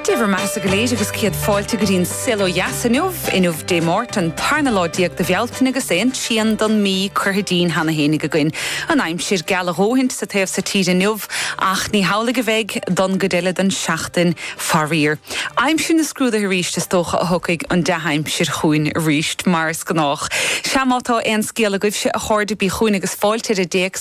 Dé bhur mbeathasa go léir agus céad fáilte go dtí an saol ó dheas inniu. Inniu Dé Máirt, an tarna lá déag de Bhealtaine agus an trian don mí curtha dínn cheana fhéinig againn. An aimsir geal a dhóthaint sa taobh so tíre inniu ach ní hamhlaidh a bheidh don gcuid eile den seachtain faraor. Aimsir na scrúduithe arís is dócha a thabharfaidh an dea-aimsir chugainn arís mar is gnách. Sea má tá aon scéal agaibhse a chairde bígí chugainn agus fáilte ar an dtéacs.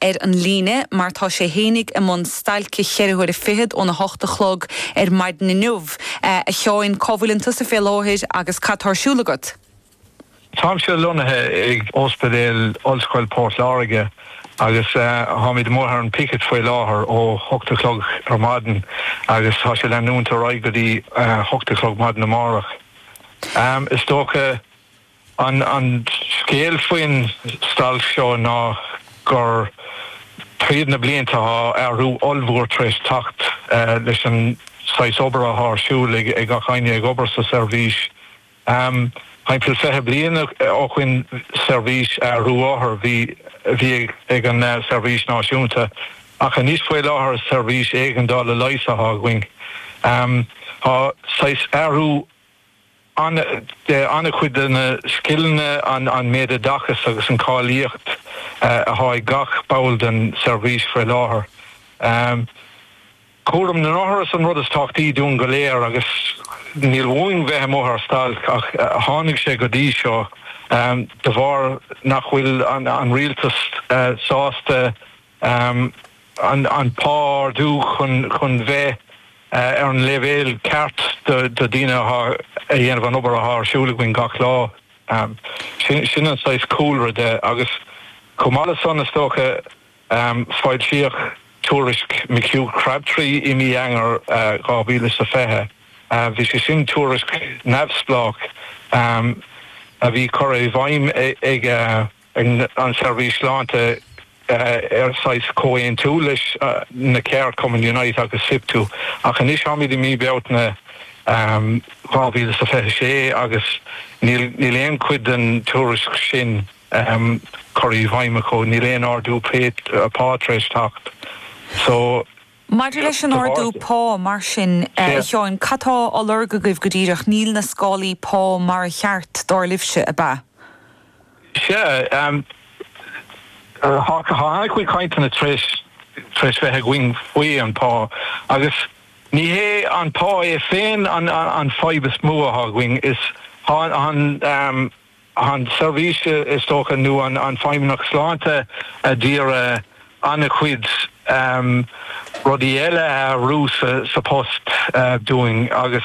ar an líne mar tá sé fhéinig i mbun stailce cheithre huaire fichead ón a hocht a chlog ar maidin inniu. A Sheáin, cá bhfuil ann tusa fé láthair agus cad tá ar siúl agat? Táimse lonnaithe ag Ospidéal Ollscoil Port Láirge agus táimid amuigh ar an picket faoi láthair ó hocht a chlog ar maidin agus tá sé ag leanúint ar aghaidh go dtí hocht a chlog maidin amárach. Is dócha An scéal faoin stailc seo ná gur tríd na blianta tá athrú ollmhór tar éis teacht leis an saghas obair athá ar siúl ag gach éinne ag obair sa seirbhís. Thimpeall fiche bliain ó shoin seirbhís aistriú othar a bhí ag an seirbhís náisiúnta ach anois faoi láthair is seirbhís éigeandála leighis athá againn. Tá saghas athrú. an-chuid de na scileanna, an méid oideachais agus an cháilíocht atá ag gach ball den tseirbhís faoi láthair. Cúram na n-othar is an rud is tábhachtaí dúinn go léir agus níl uainn a bheith amuigh ar stailc ach tháinig sé go dtí seo de bharr nach bhfuil an rialtas sásta an pá a ardú chun bheith ar an leibhéal ceart do dhaoine athá ag déanamh an obair athá ar siúl againn gach lá. Sin an saghas cúlra de agus chomh maith le san is dócha foilsíodh tuairisc McHugh Crabtree i mí Eanáir 2020. Bhí sé sin tuairisc neamhspleách a bhí curtha i bhfeidhm ag. An tSeirbhís Sláinte ar saghas comhaontú leis na ceardchumainn Unite agus Siptu, ach anois táimid i mí Bealtaine 2026 agus níl aon chuid den tuairisc sin curtha i bhfeidhm acu, níl aon ardú pá tar éis teacht. So. Maidir leis an ardú pá, mar sin, a Sheáin, cad tá á lorg agaibh go díreach? Níl na scálaí pá mar is ceart, dar libhse, ab ea? Sea, tá na cainteanna tréis bheith againn faoi an pá agus ní hé an pá é féin an fhadhb is mó atá againn, is an seirbhís is dócha nó an Feidhmeannacht Sláinte ag iarraidh an-chuid rudaí eile a athrú sa post dúinn agus.